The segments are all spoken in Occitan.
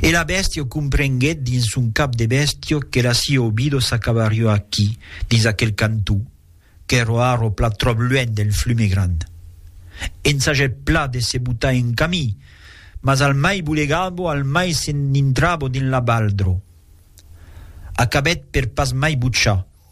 E la bèstia comprenguèt dins son cap de bèstia que la sia obida s'acabariá aquí, dins aquel cantó, qu'èra ara plat tròp luènh del flume gran. Ensagèt plat de se botar en camí, mas al mai bolegava, al mai s'enditrava dins la baldra. Acabèt per pas mai bochar.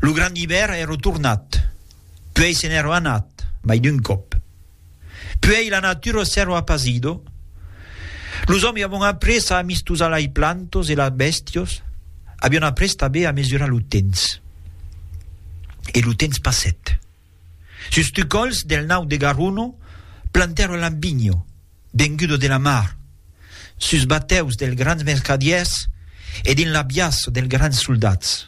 Lo grand ivèr è retornat, puèi se n'èro anat mai d'un còp. Puèi la natura s'èro apasido, los òmi avon après a amistosar lai plantos e las bèstios avion après tanben a mesurar lo temps. E lo temps passèt. Sus tu còls del nau de Garuno plantèro l'ambinho, vengudo de la mar, sus batèus del grans mercadièrs e dins l'abiaço del grans soldats.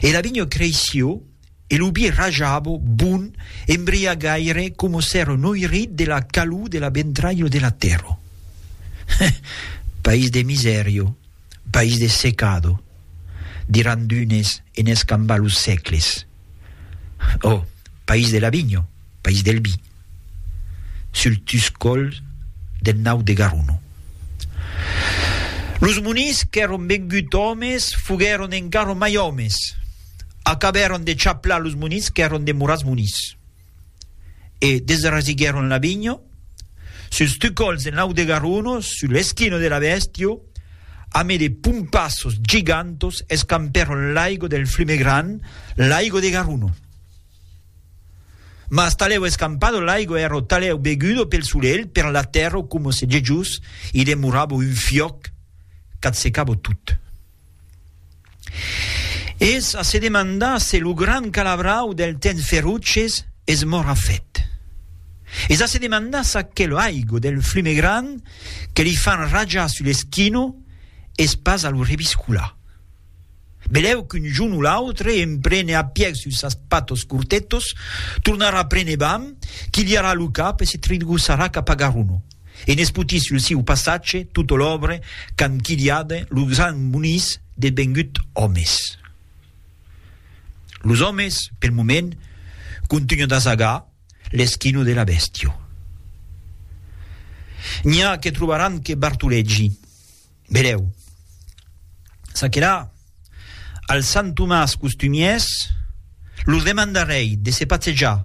E l'abinho creisio e lo bi rajabo bon embriagaire coma s'èro noirit de la calor de la ventralho de la tèrra. Heh! País de misèrio, país de secado, diràn d'unes en escambar los sècles. Ò país de la vinho, país del vi, sul tuscòl del nau de Garuno. Los monís qu'èron vengut òmes foguèron encara mai òmes, acabèron de chaplar los monís qu'èron demorats monís. e desrasiguèron la vinha, sus tucolhs en aute garonos, sus l'esquina de la bèstia, amé de pompassos gigantos, escampèron l'aigo del flume grand, l'aigo de Garuno. Mas talèu escampado l'aigo èra o talèu begudo pel solelh, per la tèrra o coma se gejós i demorava un fiòc qu'atsecava tot. Es a se demandar se lo gran calabrau del temps feroces es mora fèt. Es a se demandar s'aquel aigo del flume gran que li fan rajar sul esquino es pas a lo reviscolar. Belèu qu'un jorn o l'autre en prene a pièg sus sas patos cortetos, tornarà prene vam, quilharà lo cap e se tritgossarà cap a Garuno. e n'espotís lo siu passatge tota l'òbre qu'an quilhada lo grand Muniz devengut òmes. Los òmes, pel moment, contunhan d'asagar l'esquina de la bèstia. N'i a que trobaràn que Bartolegi. Vedèu. Ça que la, al Sant Tomàs costumièrs, los demandarèi de se patzejar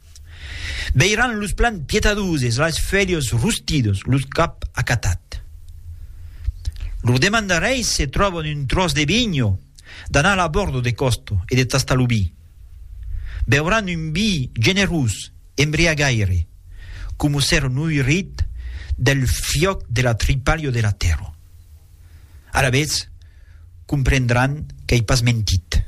Veiran los plans pietadoses, las felhas rustidas, los cap acatat. Lor demandareis se tròban un tròç de vinho, d'anar a la bòrda de còsta e de tastar lo vi. Beuran un vi generós, embriagaire, coma s'èra noirit del fiòc de la tripalha de la tèrra. Alavetz, comprendran qu'ei pas mentit.